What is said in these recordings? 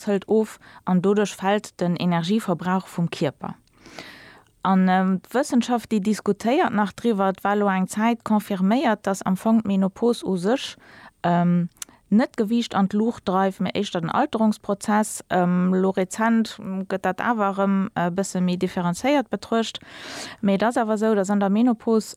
Fett hëlt of an doduerch fält den Energieverbrauch vum Kierper. An d'Wëssenschaft déi diskutéiert nach driwwer, et war elo eng Zäit confirméiert, datt am Fong d'Menopos u sech net d'Gewiicht an d'Luucht dreift, mee éischter den Alterungsprozess. Elo rezent gëtt dat awer erëm e bësse méi differenzéiert betruecht. Mee et ass awer esou, datt an der Menopos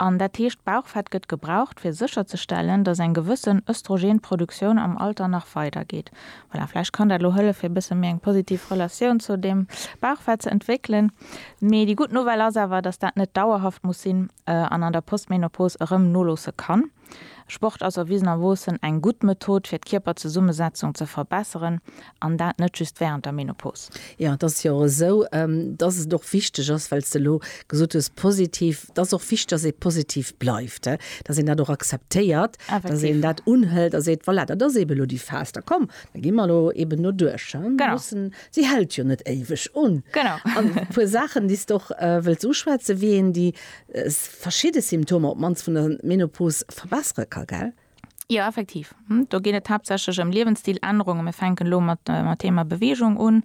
An dat heescht, d'Bauchfett gëtt gebraucht, fir sécherzestellen, datt eng gewëssen Östrogenproduktioun am Alter nach weidergeet. Voilà, vläicht kann dat elo hëllef, fir e bësse méi eng positiv Relatioun zu deem Bauchfett ze entwéckelen. Mee déi gutt Nouvelle ass awer, datt dat net dauerhaft muss sinn an an der Postmenopause erëm noloosse kann. Sport ass erwisenerwoossen eng gutt Method fir d'Kierperzesummesetzung ze verbesseren, an dat net just wärend der Menopos. Jo, et ass jo och esou, dass et och wichteg ass, well s de elo gesot hues, positiv, et ass och wichteg, dass ee positiv bleift, dass een dat och akzeptéiert, dass een dat unhëlt a seet, voilà, dat ass eeben elo déi Phas, da komm, da gi mer elo eeben doduerch. Si hält jo net éiweg un. An e puer Saachen, déi s de och wëlls uschwätzen, wéi een déi Verschidde Symptomer op mannst vun der Menopos verbessere ka, gell? Jo, effektiv. Do geet et haaptsächlech ëm Liewensstiläännerungen. Mir fänken elo mat dem Thema Beweegung un.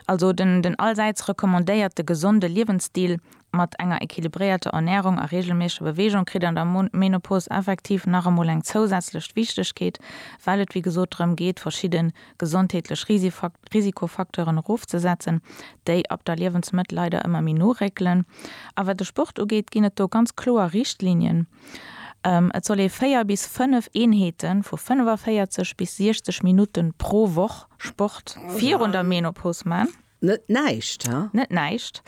Also den allsäits recommandéierte gesonde Liewensstil mat enger equilibréierter Ernärung a reegelméissege Beweegung kritt an der Menopos effektiv nach emol eng zousätzlech Wichtegkeet, well et wéi gesot drëm geet, verschidde gesondheetlech Risikofacteuren erofzesetzen, déi ab der Liewensmëtt leider ëmmer méi no réckelen. A wat de Sport ugeet, ginn et do ganz kloer Richtlinien, Et soll ee 4 bis 5 Eenheete vu 45 bis 60 Minutte pro Woch Sport virun der Menopause man. Net näischt, he? Net näischt.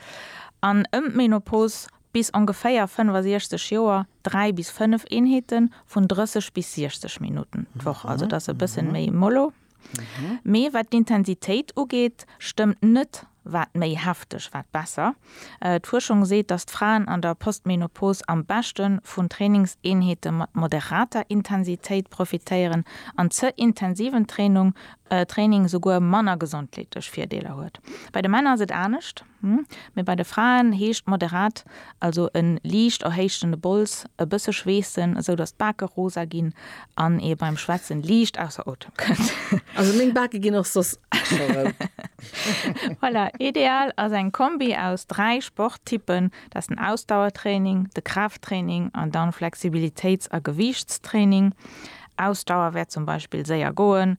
An ëm d'Menopause, bis ongeféier 65 Joer, dräi bis fënnf Eenheeten, vun 30 bis 60 Minutten d'Woch. Also dat ass e bëssen méi mollo. Mee wat d'Intensitéit ugeet, stëmmt net, wat méi hefteg, wat besser. D'Fuerschung seet, datt d'Fraen an der Postmenopause am beschte vun Trainingseenheete mat moderater Intensitéit profitéieren an ze intensiven Trainung, Training, souguer manner gesondleetlech Virdeeler huet. Bei de Männer ass et anescht, mee bei de Fraen heescht moderat also en liicht erhéichten Bols, e bësse schweessen, esou datt d'Bake rosa ginn An ee beim Schwätzen liicht ausser Otem kënnt. Also meng Bake ginn och soss scho rout. Voilà, ideal ass eng Kombi aus 3 Sporttypen, dat ass den Ausdauertraining, de Kraafttraining an dann Flexibilitéits a Gewiichtstraining. Ausdauer wär zum Beispill séier goen,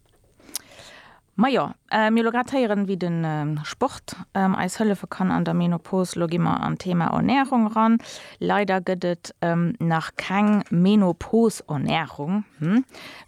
Majo, mir elo grad héieren wéi den Sport eis hëllefen kann an der Menopause. Elo gi mer an d'Thema Ernährung eran. Leider gëtt et nach keng Menopause-Ernährung,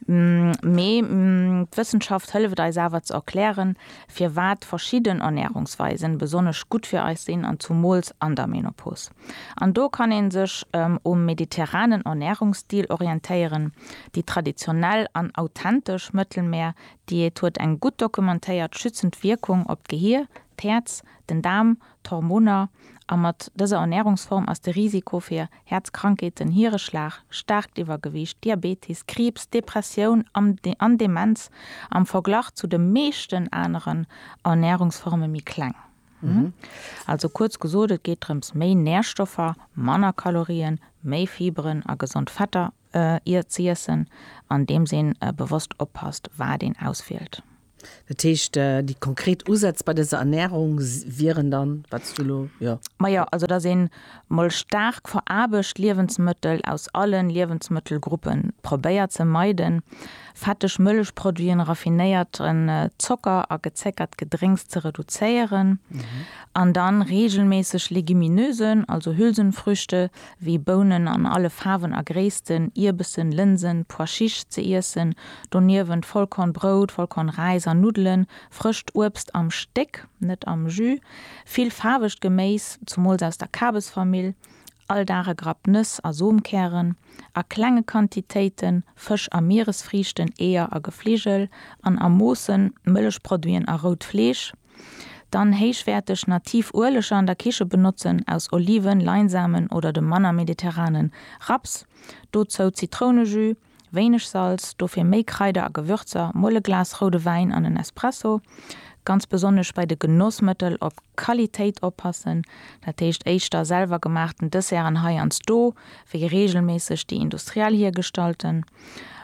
mee d'Wëssenschaft hëlleft eis awer ze erklären firwat verschidden Ernährungsweisen besonnesch gutt fir eis sinn an zumools an der Menopause. An do kann een sech um mediterranen Ernährungsstil orientéieren. Déi traditionell an authentesch Mëttelmeer-Diät huet eng gutt dokumentéiert schützend Wierkung op d'Gehir, d'Häerz, den Daarm, d'Hormoner a mat dëser Ernährungsform ass de Risiko fir Häerzkrankheeten, Hiereschlag, staarkt Iwwergewiicht, Diabetes, Kriibs, Depressioun an Demenz am Verglach zu de meeschten aneren Ernährungsforme méi kleng. Also kuerz gesot, et geet drëms méi Nährstoffer, manner Kalorien, méi Fiberen a gesond Fetter ze iessen, andeems een bewosst oppasst wat een auswielt. Dat heescht, déi konkret Usätz bei dëser Ernährung wieren dann, wat s du elo, jo. Majo, also dass een mol staark veraarbecht Liewensmëttel aus allen Liewensmëttelgruppen probéiert ze meiden, fetteg Mëllechproduiten, raffinéierten Zocker a gezéckert Gedrénks ze reduzéieren an dann reegelméisseg Legumineusen, also Hülsenfrüchte wéi Bounen an alle Faarwen a Gréissten, Ierbessen, Lënsen, Pois chiches, ze iessen, doniewent Vollkornbrout, Vollkornräis an Nuddelen, frëscht Uebst am Stéck, net am Jus, vill faarwegt Geméis, zumools aus der Kabesfamill, all Dag e Grapp Nëss a Somkären. a klenge Quantitéiten, Fësch a Mieresfriichten, Eeër a Gefligel, an a Moossen, Mëllechproduiten a rout Fleesch, dann héichwäerteg nativ Ueleger an der Kiche benotzen, aus Oliven, Leinsamen oder dem manner mediterranen Raps, dozou Zitrounejus, wéineg Salz, dofir méi Kraider a Gewürzer, mol e Glas roude Wäin an en Espresso. Ganz besonnesch bei de Genossmëttel op Qualitéit oppassen, dat heescht éischter selwergemaachten Desserten hei ans do, wéi reegelméisseg déi industriell hiergestallten,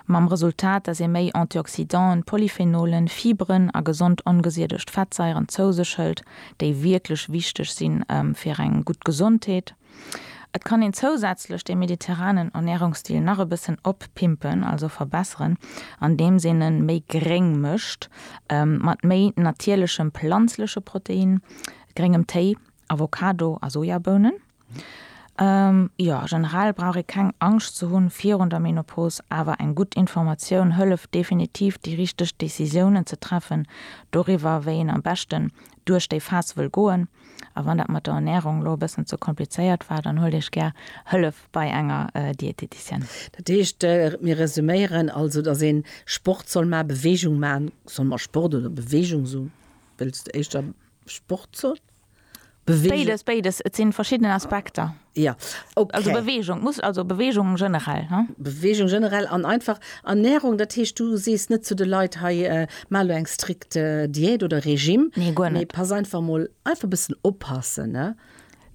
mam Resultat, dass ee méi Antioxydanten, Polyphenolen, Fiberen a gesond ongesiedegt Fettsaieren zou sech hëlt, déi wierklech wichteg si fir eng gutt Gesondheet. Et kann een zousätzlech de mediterranen Ernärungsstil nach e bëssen oppimpen, also verbesseren, andeems een e méi gréng mécht, mat méi natierlechem planzleche Protein, gréngem Téi Avocado a Sojabounen. Jo, generell brauch ee keng Angscht ze hunn virun der Menopos, awer eng gutt Informatioun hëlleft definitiv déi richteg Decisiounen ze treffen doriwwer wéi een am beschten duerch déi Phas wëll goen. A wann dat mat der Ernärung elo e bëssen ze komplizéiert war, dann huelt Iech gär Hëllef bei enger Dieteticienne. Dat heescht, mir resuméieren also, dass ee Sport soll man, Beweegung man soll, ma Sport oder Beweegung, sou wëlls du éischter Sport soll? Bewegung. Béides, béides, et sinn verschidden Aspekter. Ja, okay. Also Bewegung, muss, also Bewegung generell. Hm? Bewegung generell an einfach Ernährung, dat heescht du sees net zu de Leit hei äh, mal lo eng strikt äh, Diät oder Regime. Nee, guer net. Nee, pass einfach mal einfach bëssen oppassen, ne?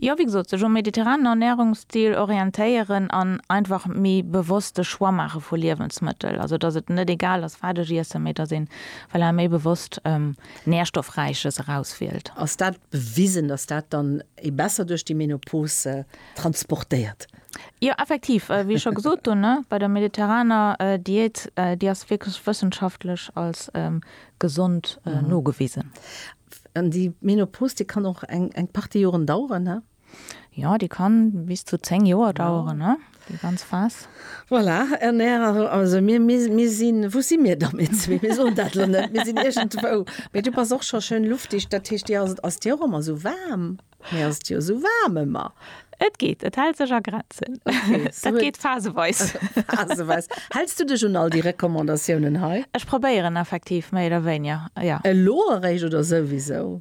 Ja, wie gesot, sech um mediterranen Ernährungsstil orientéieren an einfach méi bewosst de Choix maache vu Liewensmëttel. Also dass et net egal ass wat ech iessen, mee dass een voilà, méi bewosst ähm, Nährstoffräiches erauswielt. Ass dat bewisen, dass dat dann ee besser duerch déi Menopause transportéiert? Jo, effektiv, wéi ech scho gesot hunn, bei der mediterraner Diät, déi ass wierklech wëssenschaftlech als gesond nogewisen. An déi Menopause, déi kann och eng Partie Joren daueren? Ja, déi kann bis zu 10 Joer daueren, ne? Déi ganz Phas. Voilà, an Är, also mir, mir, mir sinn, wou si mir da mir zwee? Mir soen dat elo net, mir sinn iergendwou. Mee du bass och scho schön luftig, dat heescht, dir ass et, ass dir och ëmmer esou waarm? Mir ass et jo esou waarm ëmmer. Et geet, et hält sech a Grenzen. Dat geet phaseweis. Phaseweis. Häls du dech un all déi Recommandatiounen hei? Ech probéieren effektiv méi oder wéinier, jo. Elo eréischt oder souwisou?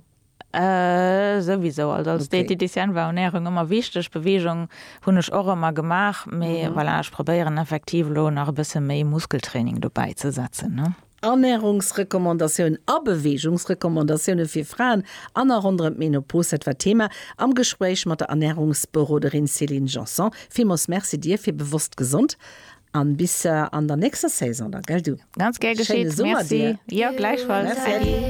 Souwisou, also als Diététicienne war Ernährung ëmmer wichteg, Beweegung hunn ech och ëmmer gemaach, mee voilà, ech probéieren effektiv elo nach e bësse méi Muskeltraining dobäi ze setzen, ne. Ernährungsrecommandatiounen a Beweegungsrecommandatiounen fir Fraen an a ronderëm d'Menopause, dat war d'Thema am Gespréich mat der Ernährungsberoderin Céline Janson. Villmools Merci dir fir Bewosst Gesond an bis an der nächster Saison dann, gell du. Ganz gär geschéet, merci. Schéine Summer dir. Jo, gläichfalls. Merci.